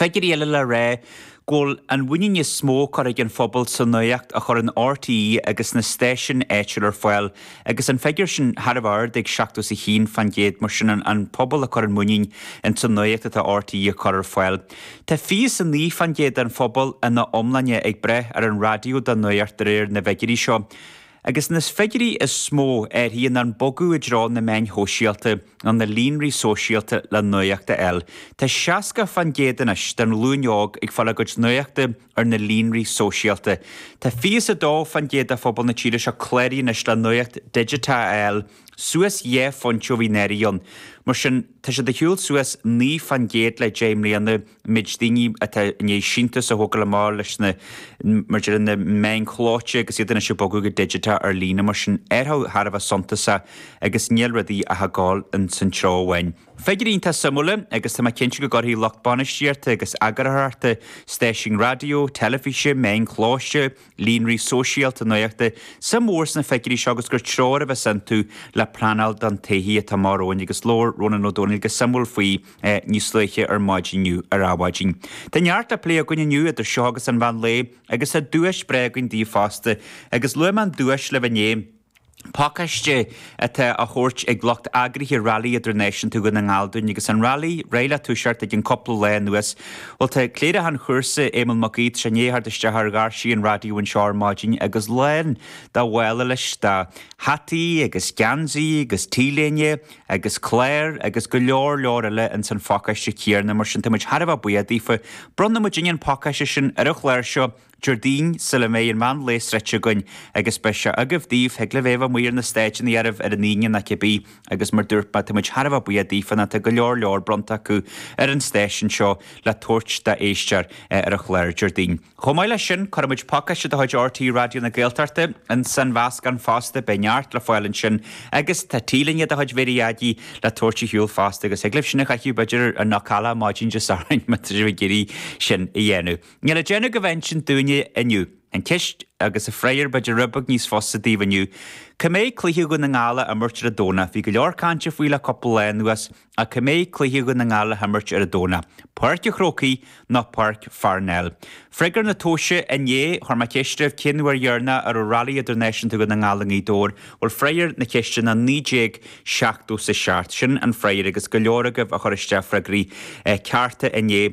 Figiúirí eile le rá go bhfuil an mhuinín is mó curtha ag an phobal sa nuacht a chuireann RTÉ agus na stáisiúin áitiúil ar fáil agus an figiúr sin thar a bheith ard ag 71%. Mar sin den phobal a chuireann muinín ins an nuacht atá RTÉ ag cur ar fáil. Tá 29% den phobal ina iomláine ag brath ar an raidió don nuacht de réir na bhfigiúirí seo. Agus na figiúirí is mó athraithe ná an bogadh i dtreo na meáin shóisialta nó na líonraí sóisialta le nuacht a fháil. Tá 60 fán gcéad anois den ghlúin óg ag fáil a gcuid nuachta ar na líonraí sóisialta. Tá 22 fán gcéad de phobal na tíre seo cláraithe anois le nuacht digiteach a fháil, suas dhá phointe ó bhí anuraidh ann. Mar sin, tá sé i ndiaidh a ghabháil suas 9 fán gcéad le deich mbliana. méid daoine atá i ndiaidh síntiús a thógáil amach leis na mar déarfá na meáin chlóite agus iad anois ag bogadh go digiteach ar líne. Mar sin athrú thar a bheith suntasach agus níl rudaí ach ag gabháil insan treo amháin. Figiúirí iontach suimiúla agus tá mé cinnte go gcuirfidh lucht bainistíochta agus eagarthóireachta stáisiúin raidió, teilifíse, meáin chlóite, líonraí sóisialta nuachta suim mhór sna figiúirí seo agus gur treoir a bheas iontu le pleanáil don todhchaí atá amach romhainn agus labhair Rónán Ó Domhnaill go suimiúil faoi níos luaithe ar maidin inniu ar Adhmhaidin. Tá neart le plé againn inniu idir seo agus an mheán lae agus tá duais breá againn daoibh fosta agus luaigh mé an duais libh inné, pacáiste atá á thabhairt ag lucht eagraithe Railí Idirnáisiúnta Dhún na nGall dúinn agus an railí réidh le toiseacht i gceann cúpla lá anois. Bhuel tá cléireach an chúrsa, Éamonn Mac Aoidh, i ndiaidh a theacht isteach ar dhoirse an raidió anseo ar maidin agus lán dá mhála leis de hataí agus geansaí agus t-léine, agus cláir agus go leor leor eile ins an phacáiste céarna mar sin táimid thar a bheith buíoch daofa. Bronnfaidh muidinne an pacáiste sin ar an chlár seo Déardaoin sula mbeidh an meán lae sroichte againn agus beidh sé agaibh daoibh, thig libh é a bheith amuigh ar na stáideannaí oraibh ar an Aoine nó cibé agus mar dúirt mé táimid thar a bheith buíoch daofa nó tá go leor leor bronnta acu ar an stáisiún seo le tabhairt d'éisteoir ar an chlár Déardaoin. Chomh maith leis sin, cuirfidh muid pacáiste de chuid RTÉ Raidió na Gaeltachta ins an mheascán fosta, beidh neart le fáil ansin agus tá T-léine de chuid Mhéirí Eadí le tabhairt a shiúl fosta agus thig libh sin a chaitheamh b'fhéidir ar Knockalla maidin Dé Sathairn má tá sibh ag iarraidh sin a dhéanamh. Níl le déanamh agaibh ach insint dúinne inniu. An cheist agus an freagar b'fhéidir rud beag níos fusa daoibh inniu. Cá mbeidh cluiche Dhún na nGall á imirt ar an Domhnach? Bhí go leor cainte faoi le cúpla lá anuas. Ach cá mbeidh cluiche Dhún na nGall le himirt ar an Domhnach, Páirc a' Chrócaigh nó Páirc Pharnell? Freagra na tomhaise Inné chuir mé ceist oraibh cén uair dheireanach a raibh Railí Idirnáisiúnta Dhún na nGall i nGaoth Dobhair? Bhuel freagar na ceiste ná 1977. Sin an freagar agus go leor agaibh a chuir isteach freagraí cearta inné.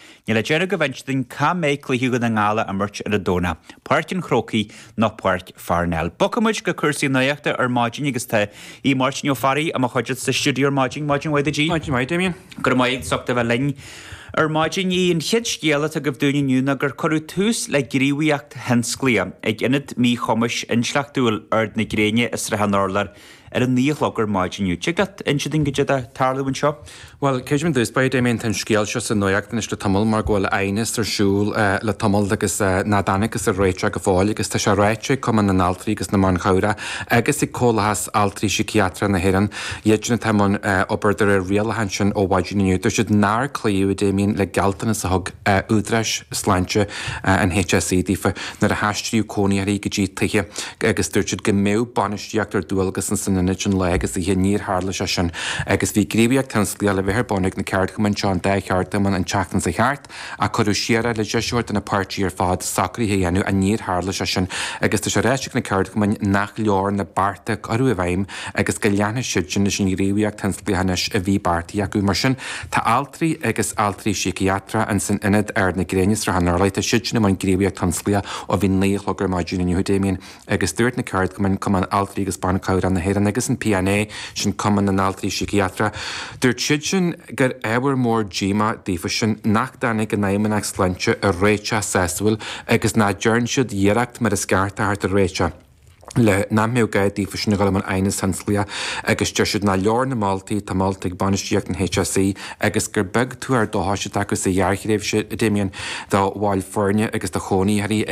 Níl le déanamh ach inse dúinn cá mbeidh cluiche Dhún na nGall á imirt ar an Domhnach, Páirc an Chrócaigh nó Páirc Pharnell. Bogfaidh muid go cúrsaí nuaíochta ar maidin agus tá Aodh Máirtín Ó Fearraigh i mo chuideachta sa stiúideo ar maidin. Maidin mhaith duit Aodh. Maidin mhaith, Damien. Go raibh maith agat as ucht a bheith linn ar maidin. Aodh, an chéad scéal atá agaibh dúinn inniu ná gur cuireadh tús le gníomhaíocht thionsclaíoch ag Ionad Míchumais Intleachtúil Ard Gréine i Srath an Urláir. Ar a naoi a chlog ar maidin inniu. Tig leat inse dúinn goidé atá ag tarlú anseo? Bhuel, mar a dúirt tú, a Damien, tá an scéal seo sa nuacht anois le tamall mar go bhfuil aighneas ar siúl le tamall agus nach dtáinigthear ar réiteach go fóill agus tá sé ráite ag Cumann na nAltraí agus na mBan Cabhrach agus ag Comhlathas Altraí Síciatracha na hÉireann, iadsin atá i mbun obair de réir rialacháin sin ó mhaidin inniu, dúirt siad nár cloíodh, a Damien, le gealltanas a thug údaráis sláinte an HSE daofa. nuair a haistríodh cónaitheoirí go dtí tithe agus dúirt siad go mbeadh bainistíocht ar dualgas in san ionad sin lá agus oíche. Níor tharla sé sin agus bhí gníomhaíocht thionsclaíoch le bheith ar bun ag na ceardchumainn seo an dá cheardchumann an tseachtain seo thart ach cuireadh siar é le deis a thabhairt do na páirtí ar fad socruithe a dhéanamh ach níor tharla sé sin agus tá sé ráite ag na ceardchumainn nach leor na bearta a cuireadh i bhfeidhm agus go leanfaidh siad sin leis an ngníomhaíocht thionsclaíoch a bhí beartaithe acu. Mar sin, tá altraí agus altraí síciatracha in san Ionad Ard Gréine, Srath an Urláir. Tá siadsin i mbun gníomhaíocht thionsclaíoch ó bhí naoi a chlog ar maidin inniu, a Damien, agus dúirt na ceardchumainn, Cumann Altraí agus Ban Cabhrach na hÉireann agus an PNA, sin Cumann na nAltraí Síciatracha, dúirt siadsin gur ábhar mór díomá daofasan nach dtáinig an Fheidhmeannacht Sláinte ar réiteach sásúil agus nach dtearn siad iarracht mar is ceart a thabhairt ar réiteach. le nach mbeadh gá daofasan a dhul i mbun aighneas tionsclaíoch agus deir siad nár leor na moltaí tá moltaí ag bainistíocht an HSE agus gur beag tuar dóchais atá acu sa ghearrthréimhse a Damien do bhaill foirne agus do chónaitheoirí ag